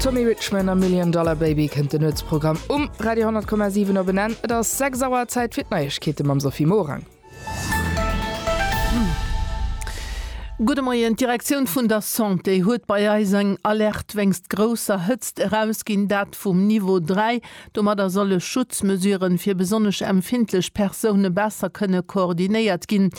Tommy Richman a Million Dollar Baby kënnt den Nuetsprogramm um Radio 10,7 op en Enn. Et ass 6 Auer, Zäit fir d'Neiegkeete mam Sophie Morang. Gudde Moien, D'Direktioun vun der Santé huet bei eis eng Alerte wéinst grousser Hëtzt erausginn, dat vum Niveau 3. Domadder solle Schutzmesuren fir besonnesch empfindlech Persoune besser kënne koordinéiert ginn.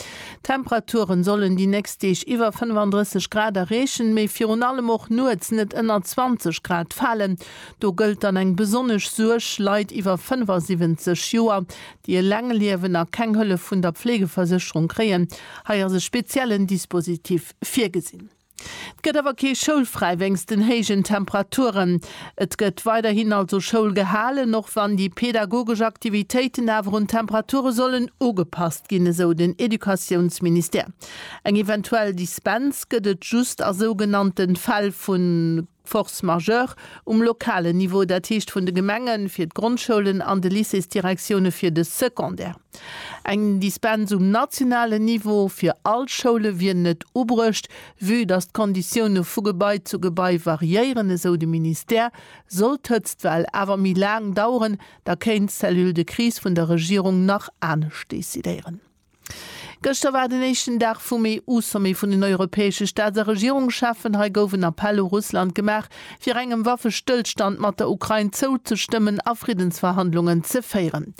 D'Temperaturen sollen déi nächst Deeg iwwer 35 Grad erreechen, mee virun allem och nuets net ënner 20 Grad falen. Do gëllt dann eng besonnesch Suerg, Leit iwwer 75 Joer, déi eleng liewen a keng Hëllef vun der Pflegeversécherung kréien. Hei ass e speziellen Dispositif virgesinn. 't gëtt awer kee Schoulfräi wéinst den héijen Temperaturen. Et gëtt weiderhin also Schoul gehalen, och wann déi pedagogesch Aktivitéiten awer un d'Temperature sollen ugepasst ginn, esou den Educatiounsministère. Eng eventuell Dispens gëtt et just a sougenannte Fäll vu. Force majeure um lokalen Niveau, dat heescht vun de Gemengen fir d'Grondschoulen an de Lycéesdirektioune fir de Secondaire. Eng Dispens um nationalen Niveau fir all Schoule wier net ubruecht, vue datt d'Konditioune vu Gebai zu Gebai variéieren, esou de Ministère. Sollt d'Hëtztwell awer méi laang daueren, da kéint d'Cellule de crise vun der Regierung nach anescht decidéieren. Gëschter war den éischten Dag vum EU-Sommet vun den europäesche Staats a Regierungscheffen. Hei gouf en Appell u Russland gemaach, fir engem Waffestëllstand mat der Ukrain zouzestëmmen a Friddensverhandlungen ze féieren.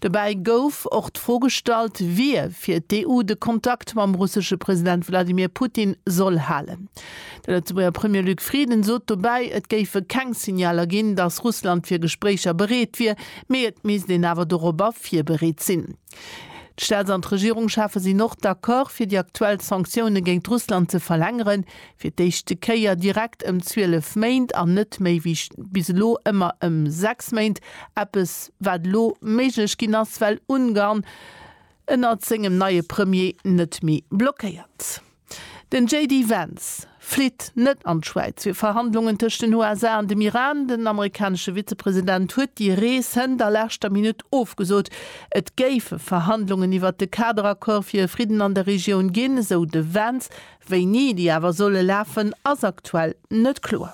Dobäi gouf och d'Fro gestallt, wie fir d'EU de Kontakt mam russesche President Wladimir Putin soll halen. De Lëtzebuerger Premier Luc Frieden sot dobäi, et géife keng Signaler ginn, datt Russland fir Gespréicher bereet wier, mee et misst een awer dorobber virbereet sinn. D'Staats an d'Regierungschefe sinn och d'Accord fir déi aktuell Sanktioune géint Russland ze verlängeren, fir d'éischte Kéier direkt ëm 12 Méint an net méi wéi bis elo ëmmer ëm 6 Méint, eppes wat elo méiglech ginn ass, well Ungarn ënnert sengem neie Premier net méi blockéiert. Den JD Vance flitt net an d'Schwäiz fir Verhandlungen tëscht den USA an dem Iran. Den amerikanesche Vizepresident huet déi Rees hënt a leschter Minutt ofgesot. Et géife Verhandlungen iwwert de Kaderaccord fir e Fridden an der Regioun ginn, esou de Vance. Wéini déi awer solle lafen, ass aktuell net kloer.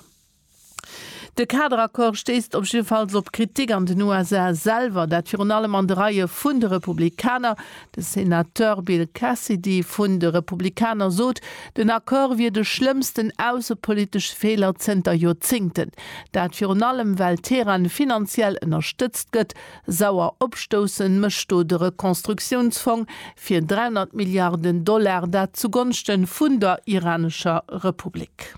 De Kaderaccord stéisst op jiddefalls op Kritik an den USA selwer, dat virun allem an de Reie vun de Republikaner. De Senateur Bill Cassidy vun de Republikaner sot, den Accord wier de schlëmmsten aussepolitesche Feeler zënter Joerzéngten. Dat virun allem, well Teheran finanziell ënnerstëtzt gëtt. Sauer opstoussen mécht do de Rekonstruktiounsfong fir 300 Milliarden Dollar, dat zugonschte vun der iranescher Republik.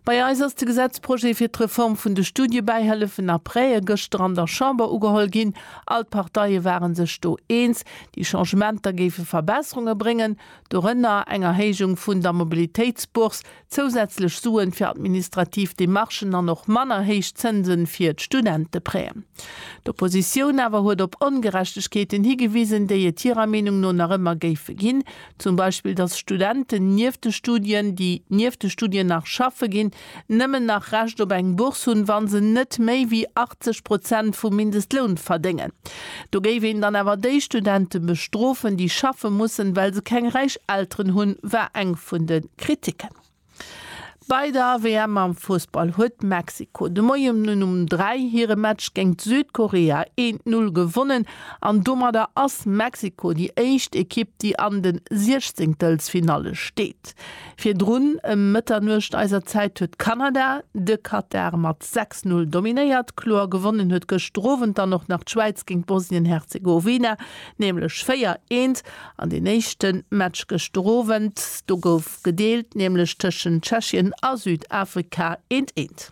Bei eis ass de Gesetzprojet fir d'Reform vun de Studiebäihëllefen a Prêtë gëschter an der Chamber ugeholl ginn. All d'Parteie ware sech do eens, déi Changementer géife Verbesserunge bréngen, dorënner eng Erhéijung vun der Mobilitéitsbourse, zousätzlech Suen fir administrativ Demarchen an och manner héich Zënse fir d'Studenteprêten. D'Oppositioun awer huet op Ongerechtegkeeten higewisen, déi et hirer Meenung no nach ëmmer géife ginn, Zum Beispill, dass Studenten nieft de Studien, déi nieft de Studien nach schaffe ginn, nëmmen nach Recht op eng Bourse hunn, wa se net méi wéi 80 Prozent vum Mindestloun verdéngen. Do géif een dann awer déi Studente bestrofen, déi schaffe mussen, well se keng räich Elteren hunn, war eng vun de Kritiken. Bei der WM am Fussball huet Mexiko de Moien um 3 hire Match géint Südkorea een d'Null gewonnen an domadder ass Mexiko déi éischt Ekipp, déi an de Siechzehntelfinalle steet. Virdrun ëm Mëtternuecht eiser Zäit huet Kanada de Katar mat 6, 0 dominéiert. Kloer gewonnen huet gëschter Owend dann och nach d'Schwäiz géint Bosnien-Herzegowina, nämlech 4, 1 an deen éischte Match gëschter Owend, do gouf. Gedeelt nämlech tëschent Tschechien a Südafrika, eent, eent.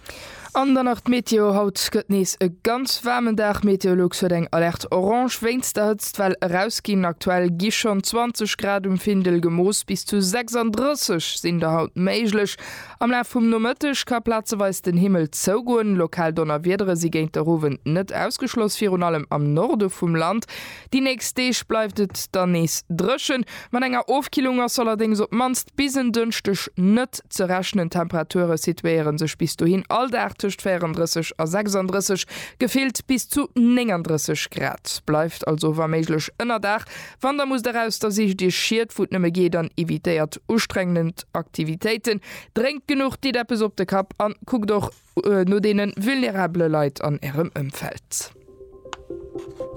An dann nach d'Meteo, Haut gëtt nees e ganz waarmen Dag. Meteolux huet eng Alerte orange wéinst der Hëtztwell erausginn. Aktuell gi schonn 20 Grad um Findel gemooss, bis zu 36 sinn der haut méiglech. Am Laf vum Nomëtteg ka plazeweis den Himmel zougoen, lokal Donnerwiedere si géint der Owend net ausgeschloss, virun allem am Norde vum Land. Déi nächst Deeg bleift et dann nees dréchen, mat enger Ofkillung ass allerdéngs op d'mannst bis en Dënschdeg net ze rechnen. D'Temperature situéiere sech bis dohin all Dag tëscht 34 a 36, gefillt bis zu 39 Grad. Bleift also wa méiglech ënnerdag, wann der musst eraus, da sicht iech Schied wou et nëmme geet an evitéiert ustrengend Aktivitéiten. Drénkt genuch, ditt eppes op de Kapp an kuckt och, no deene vulnerabele Leit an Ärem Ëmfeld.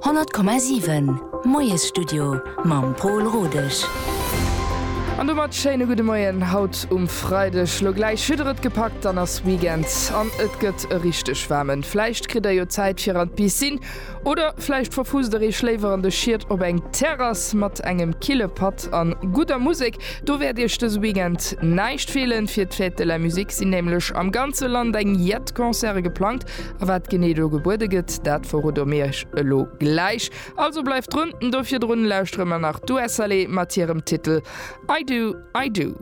100,7 Moiesstudio mam Pol Rodesch. An domat schéine gudde Moien haut um Freideg. Lo gläich hutt der et gepackt, dann ass Weekend an et gëtt e richteg waarmen. Vläicht kritt der jo Zäit fir an d'Piscine Oder vläicht verfusst der Iech léiwer an de Schied op eng Terrass mat engem kille Patt an gudder Musek. Do wäert Iech dëse Weekend näischt feelen. Fir d'Fête de la Musique sinn nämlech am ganze Land eng jett Concerte geplangt. A wat genee do gebuede gëtt, dat verrode mir Iech elo gläich. Also bleift drun. Do virdrun lauschteren mer nach d'Ua Salé mat hirem Titel I Do, I Do.